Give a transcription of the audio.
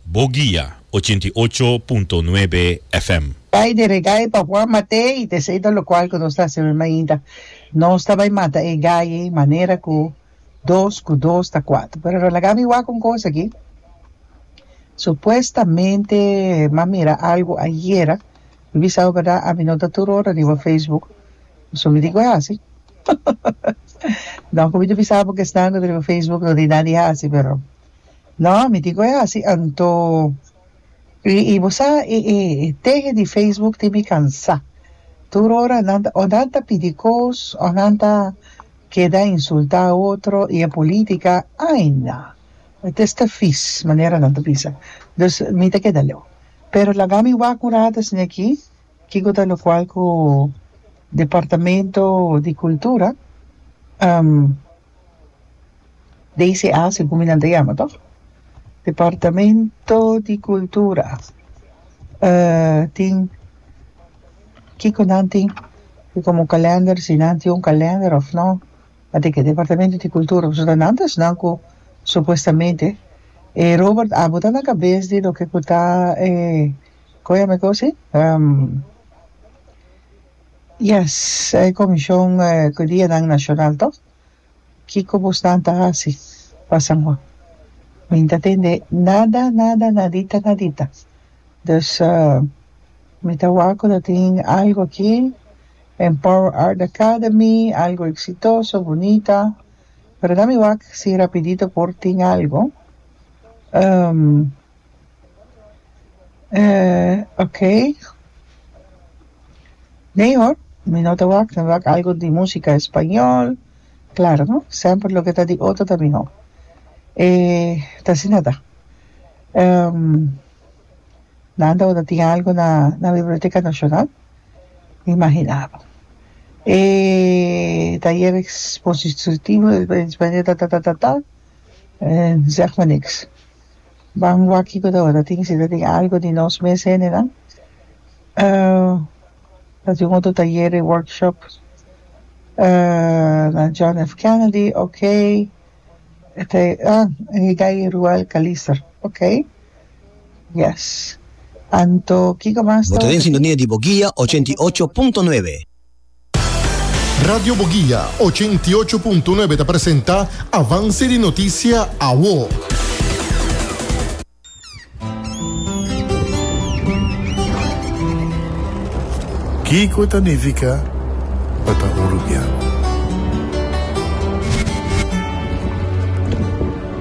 Bo guia ochenta i ocho punto nuebe FM. Bai di regai pa Juan Matei ta eseido lokual ku nos ta hasi awe mainta. Nos ta bai mata e gaye manera ku dos ku dos ta kuater. Pero lo laga mi wak un kos aki. Supuestamente m'a mira algu ayera. Mi bisau bèrdat ami no ta tur ora riba Facebook. Pasobra mi di ku a hasi. Nò ku mi ta bisa bo ku esnan ku ta riba Facebook no tin nada di hasi pero. No, mi tin cu e haci anto. Y bo sa, e tehe di Facebook tin mi cansa. Tur ora nan ta, o nan ta pidi cos, o nan ta keda insulta otro, y e politica, ay na. E ta esta vies, manera nan ta bisa. Dus, mi ta keda leu. Pero laga mi wak un rato esne aki, kico ta locual cu Departamento di Cultura, DCA si cu mi nan ta yama toh departamento di cultura eh tin kico nan tin tin como calender si nan tin un calender of no a de que departamento di cultura pasobra ta nan ta esnan cu supuestamente e Robert a bota na cabes di loke cu ta eh como a yama e cosa eh Yes, e Comision cu Dianan Nacional toh, kico busnan ta haci pa San Juan? Mi n'ta tende nada, nada, nadita, nadita. Dus mi ta wak cu ta tin algo aki, Empower Art Academy, algo exitoso, bunita, pero na mi wak si rapidito por tin algo. Eh, ok. Nee hoor, mi no ta wak, ta wak algo di música español, claro no, semper loke ta di otro ta mihó. Eh, ta asina ta. Ehm, nan ta wòrdu tin algo na, na Biblioteca Nacional, mi mahina bo. Eh, tayer expositivo, tatatata, eh, zeg me niks. Ban wak cu ta ora tin si ta tin algo di nos mes hendenan ta tin un otro tayer y workshop na John F Kennedy ok ta Hidai Ruel Calister ok yes anto kico mas ta ora tin. Bo ta den sintonia di bo guia ochenta i ocho punto nuebe. Radio Boguia, ochenta i ocho punto nuebe ta presenta avanse di notisia awo. Kiko ta nifica pa ta uruguiano?